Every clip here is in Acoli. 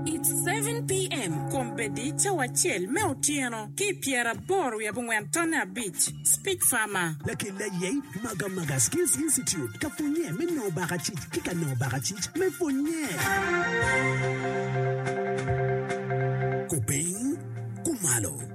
It's seven PM, kombeddi cawa acel me otyeno ki pyeraboro wiye abongwen tonne abic, Speech Farmer. Lakel aye i Maga Maga Skills Institute ka pwonnye me nongo bakacic ki ka nongo bakacic me pwonnye. Kupiny, kumalo.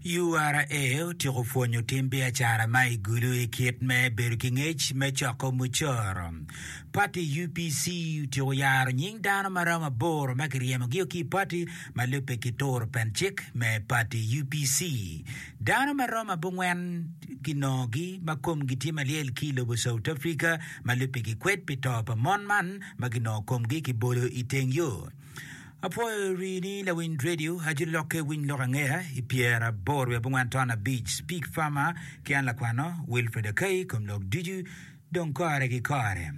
URA otyeko pwonyo tim biacara ma i Gulu i kit me bedo ki ngec me coko mucoro. Pati UPC otyeko yaro nying dano ma romo aboro ma kiryemogio ki i pati ma lubbe ki turo pen cik me pati UPC. Dano ma romo abongwen kinongogi ma komgi tye malyel ki i lobo South Africa ma lubbe gikwed pi to pa mon man ma kinongo komgi kibolo i teng yo. Apwoyo ri ni lawiny radio ajoli lokke winy lok angeya i pyera aboro wiye abongwan ton abic speak farmer ki an lakwano Wilfred Akei kom lok ducu dong kore ki kore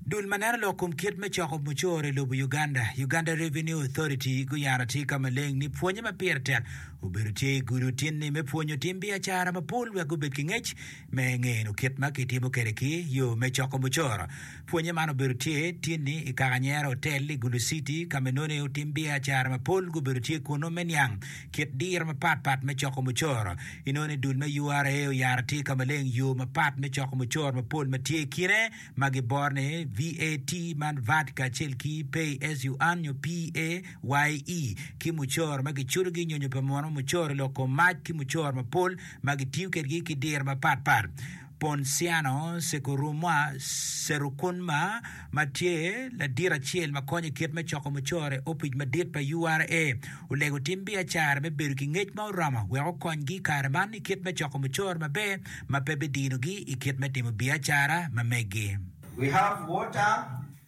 Dul ma neno lok kom kit me coko mucoro i lobo Uganda, Uganda Revenue Authority, guyano atika maleng ni pwonye ma pire tek obedo tye i gudo tin-ni me pwonyo tim biacara mapol wek gubed ki ngec Me ngeno kit ma kitimo kwede ki yo me coko mucoro, pwonye man obedo tye tinni i kaka nyero otel i Gulu City ka ma nonei otim biacara mapol gubedo tye kunnu me niang kit diro mapat pat me coko mucoro. Inoni dul me URA oyaro atika maleng yo mapat me coko mucoro mapol ma tye i kine ma giboro ni VAT man vat kacel ki Pay as you earn nyo PAYE ki mucoro ma kiculogi nyonyo pa mono mucoro i lok kom mac ki mucoro mapol ma gitiyo kedgi ki diro mapatpat, Ponsiano Sekurumwa Serukunma ma tye ladit acel ma konyo i kit me coko mucore, Opic Madit pa URA olego tim biacara me bedo ki ngec ma oromo wek okonygi i kare man i kit me coko mucore maber ma pe bidinogi i kit me timo biacara ma meggi.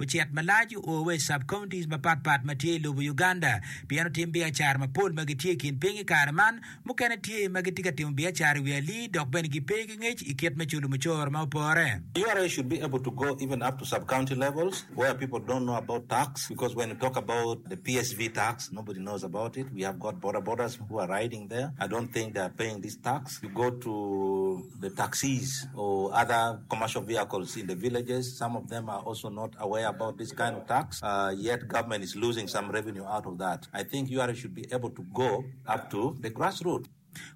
ocit malac oo wa i sub-counties mapat pat ma tye i lobo Uganda pien otim biacara mapol ma gitye i kin piny i kare man. Mukene tye ma gitye ka timo biacara i wi alii dok bene gipe ki ngec i kit me culo mucoro ma opore. Ura should be able to go even up to sub-county levels where people don't know about tax because when you talk about the PSV tax nobody knows about it, we have got bodabodas who are riding there, I don't think they are paying this tax, you go to. The taxis or other commercial vehicles in the villages some of them are also not aware about this kind of tax yet government is losing some revenue out of that I think ura should be able to go up to the grass root.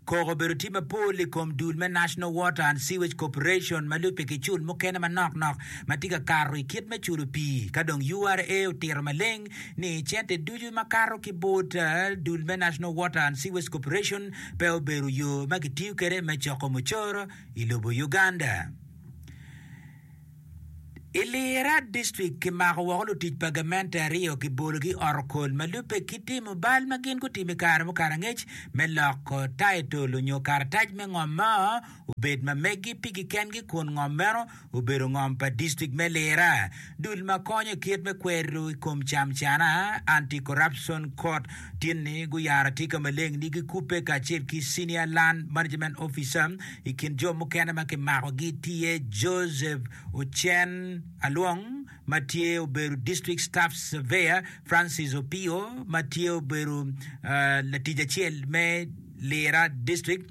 Koko obedo tye mapol i kom dul me National Water and Sewage Corporation ma lubbe ki cul mukene manok nok ma tye ka kato i kit me culo pii ka dong ura otito maleng ni cente ducu ma kato ki bot dul me National Water and Sewage Corporation pe obedo yo ma kitiyo kwede me coko mucoro i lobo Uganda. I Lira distrik, kimako woko lutic pa gamente aryo kibologi i otokol ma lubbe ki timo bal ma gin gutimo i kare mo kare angec me loko taitol onyo karatac me ngom mo obed ma meggi pigi kengi kun ngom meno obedo ngom pa Distrik me Lira dul ma konyo kit me kwero i kom camcana, Anti-Corruption Court, tin ni guyaro atika maleng ni gikubbe kacel ki Senior Land Management Officer. I kin jo mukene ma kimakogi tye Joseph Ocen Alwong ma tye obedo District Staff Surveyor, Francis Opio ma tye obedo latic acel me Lira District,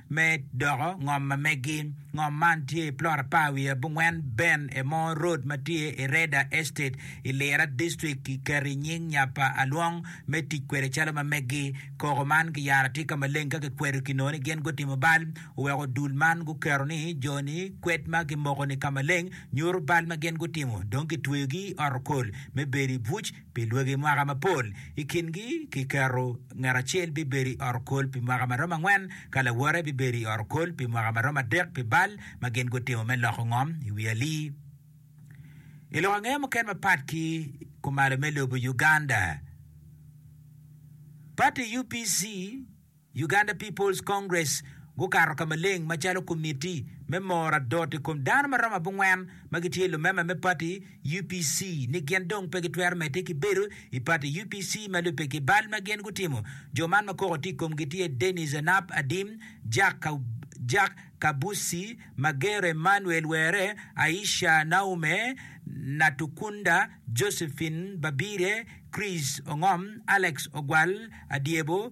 Me doko ngom ma megi, ngom man tye i plot apar wiye abongwen Ben Emo Road ma tye i Reda Estate i Lira District. Kiketo i nying nya pa Alwong me tic kwede calo ma megi. Koko man kiyaro atika maleng ka kikwedo ki nongo ni gin gutimo bal. Oweko dul man guketo ni jo-ni kwed ma kimoko-ni ka maleng nyuto bal ma gin gutimo dong kitweyogi i ot okol me bedo i buc. Pi dwagi mwaka mapol, i kingi kiketo ngat acel bibedo i ot okol pi mwaka ma romo angwen, ka lawote bibedo i ot okol pi mwaka ma romo adek pi bal ma gin gutimo me loko ngom i wi ali. I lok angeye mukene mapat ki kumalo me lobo Uganda, pati UPC Uganda People's Congress gukato ka maleng macalo komitti me moro adot i kom dano ma romo abongwen ma gitye lumema me pati UPC ni gin dong pe gitwero medde ki bedo i pati UPC ma lubbe ki bal ma gin gutimo. Jo man ma koko tye i komgi tye Denis Anap Adim, Jack Kabusi, Magero Emmanuel Were, Aisha Naume Natukunda, Josephine Babirye, Chris Ongom, Alex Ogwal Adyebo,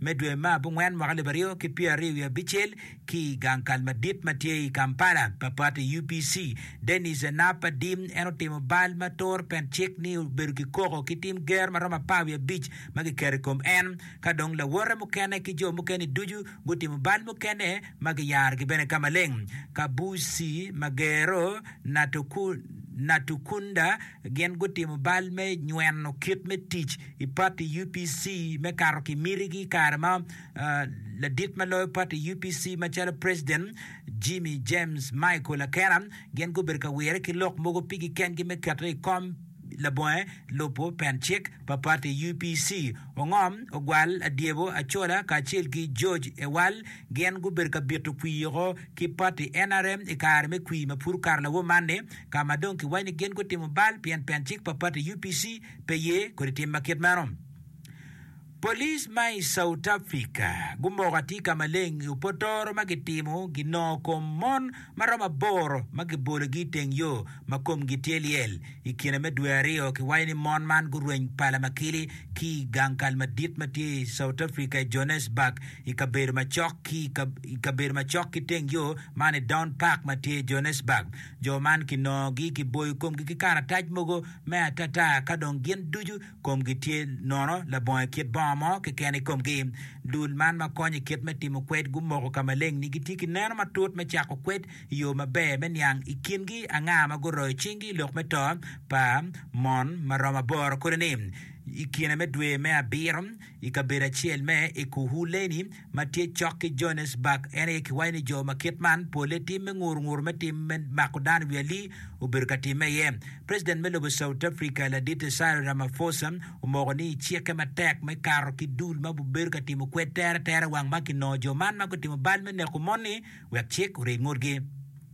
me dwe ma abongwen mwaka alip aryo ki pyera aryo wiye abicel ki i gang kal madit ma tye i Kampala pa pati UPC. Denis Enap Adim en otimo bal ma toro pen cik ni obedo ki koko ki tim ger ma romo apar wiye abic ma kiketo i kom en ka dong lawote mukene ki jo mukene-ni ducu gutimo bal mukene ma giyarogi bene ka maleng. Kabusi Magero Natukunda. Gin gutimo bal me nyweno kit me tic i pati UPC me kato ki mitigi i kare ma ladit ma loyo pati UPC macalo Preciden Jimmy James Michael Akena gin gubedo ka wire ki lok mogo pigi kengi me kete i kom labonge lubo pen cik pa pati UPC. Ongom, Ogwal, Adyebo, Acola kacel ki George Ewal gin gubedo ka bito kwir woko ki pati nrm i kare me kwir ma pud okato lawo man-ni. ka ma dong kiwaco ni gin gutimo bal pien pen cik pa pati UPC pe ye kodi tim ma kit meno. Police ma i Sautafrika gumoko atir ka maleng i opotoro ma gitimo ginongo kom mon ma romo aboro ma gibologi i teng yo ma komgi tye lyel i kine me dwe aryo. Kiwaco ni mon man gurweny pala makili ki i gang kal madit ma tye i Sautafrika i Johannesburg i kabedo macok ki i kabedo macok ki teng yo man i Down Park ma tye i Johannesburg. Jo man kinongogi kiboyo komgi ki karatac mogo me atata ka dong gin ducu komgi tye nono labongo i kit bongo mo keken i komgi. Dul man ma konyo i kit me timo kwed gumoko ka maleng-ni gitye ki neno matut me cako kwed i yo maber me niang i kingi anga ma guroyo cinggi i lok me to pa mon ma romo aboro kodi ni i kine me dwe me abiro i kabedo acel me Ekurhuleni. ma tye cok ki Johanesburg, en aye kiwaco ni jo ma kit man polle tim me nguru nguru me tim me mako dano i wi ali obedo ka timme iye. President me lobo South Africa, Ladite Cyril Ramaphosa, omoko ni icikke matek me kato ki dul ma obedo ka timo kwed tere tere wang ma kinongo jo man ma gutimo bal me neko moni wek cik oryeny ngutgi.